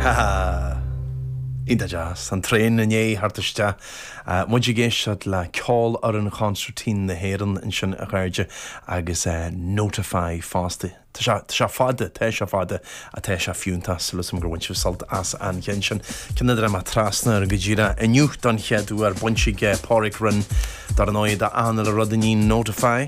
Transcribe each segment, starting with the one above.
Ha ha! Iontach deas. An traein i ndiaidh theacht isteach. Muid ag éisteacht le Ceolfhoireann Chonsairtín na hÉireann ansin a chairde, agus Notify fosta. Tá sé, tá sé fada, tá sé fada, ach tá sé fiúntach. Súil 'am gur bhain sibh sult as an cheann sin. Ceann a dtáinig mé trasna air go díreach inniu don chéad uair, baint aige Pádraig Rynne, dar ndóigh, le achan uile rud a níonn Notify.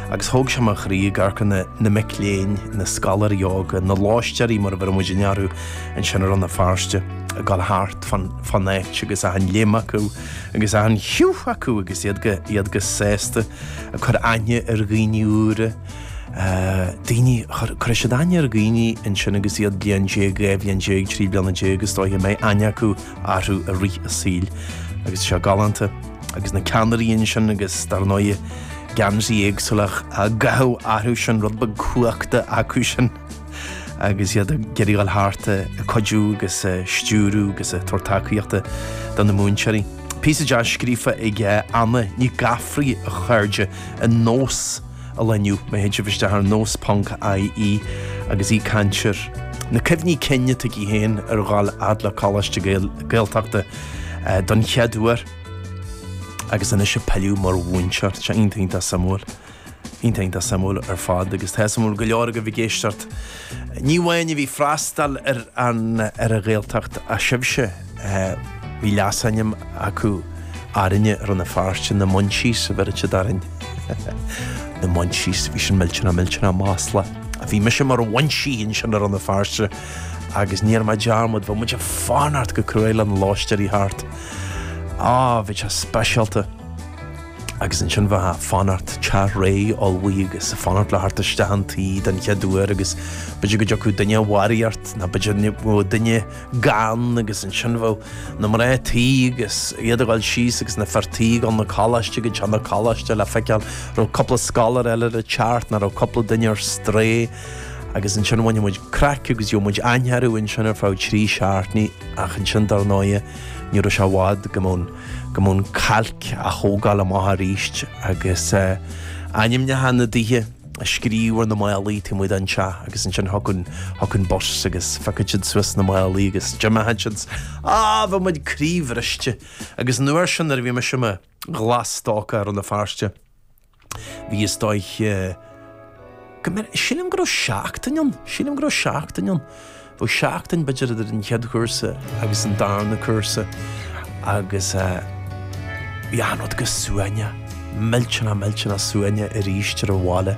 Agus thóg sé mo chroí ag amharc ar na mic léinn, na scoláirí óga, na lóistéirí mar a bheireann muidinne orthu ansin i Rann na Feirste, ag dul thart fán áit agus achan léim acu agus achan liú acu agus iad go sásta ag cur aithne ar dhaoine úra, daoine, cuirfidh siad aithne ar dhaoine ansin agus iad bliain déag, dhá bhliain déag, trí bliana déag is dóiche go mbeidh aithne acu orthu i rith a saoil agus seo galánta. Agus na ceannairí ansin agus dar ndóigh, geansaí éagsúlach á gcaitheamh orthu sin, rud beag cumhachta acu sin agus iad ag iarraidh dul thart ag cuidiú agus ag stiúradh agus ag tabhairt tacaíochta do na múinteoirí. Píosa deas scríofa ag Anna Nic Gafraidh a chairde in Nós ar líne inniu, má théid sibh isteach ar nós.ie agus í ag caint ar na cuimhní cinn atá aici féin ar dhul a fhad le Coláiste Gaeltachta don chéad uair. Agus anois ag pilleadh mar mhúinteoir, tá sé iontach iontach suimiúil. Iontach iontach suimiúil ar fad, agus tá suimiúil go leor agaibh ag éisteacht. Ní amháin a bhí ag freastal ar an, ar an Ghaeltacht ach sibhse, bhí leasainm acu orainne i Rann na Feirste, na Munchies a bheireadh siad orainn. Na Munchies, bhí sin millteanach millteanach maslach. Bhí mise mar Munchie ansin i Rann na Feirste agus ní dhearn mé dearmad, bheadh muid ag fanacht go cruaidh le na lóistéirí theacht. Ah, bhí sé speisialta. Agus ansin bheifeá a' fanacht, teach réidh, ullmhaithe agus a' fanacht le theacht isteach an tí den chéad uair agus b'fhéidir go dtiocfadh duine de bharraíocht ná b'fhéidir go mbeadh duine gann agus ansin bheadh na mná tí agus iad a' dhul síos agus na fir tí ag dul na coláiste go dtí na coláiste le feiceáil raibh cúpla scoláire eile a' teacht ná raibh cúpla duine ar strae agus ansin bhainfeadh muid craic agus gheobhadh muid aithne orthu ansin ar feadh trí seachtní ach ansin dar ndóighe ní raibh sé i bhfad go mbeadh an, go mbeadh an cailc á thógáil amach arís agus eh, ainmneacha na dtithe á scríobh ar na málaí taobh amuigh den teach agus ansin thiocfadh an, thiocfadh an bus agus phiocfadh siad suas na málaí agus d'imeodh siad agus bheadh muid croíbhriste agus an uair sin nuair a bhí mise i mo ghlas stócach i Rann na Feirste Bhí is dóigh go mbeadh, sílim go raibh seachtain ann, sílim go raibh seachtain ann, bheadh seachtain b'fhéidir idir an chéad chúrsa agus an darna cúrsa agus bhí achan rud go suaimhneach, millteanach millteanach suaimhneach arís ar an bhaile.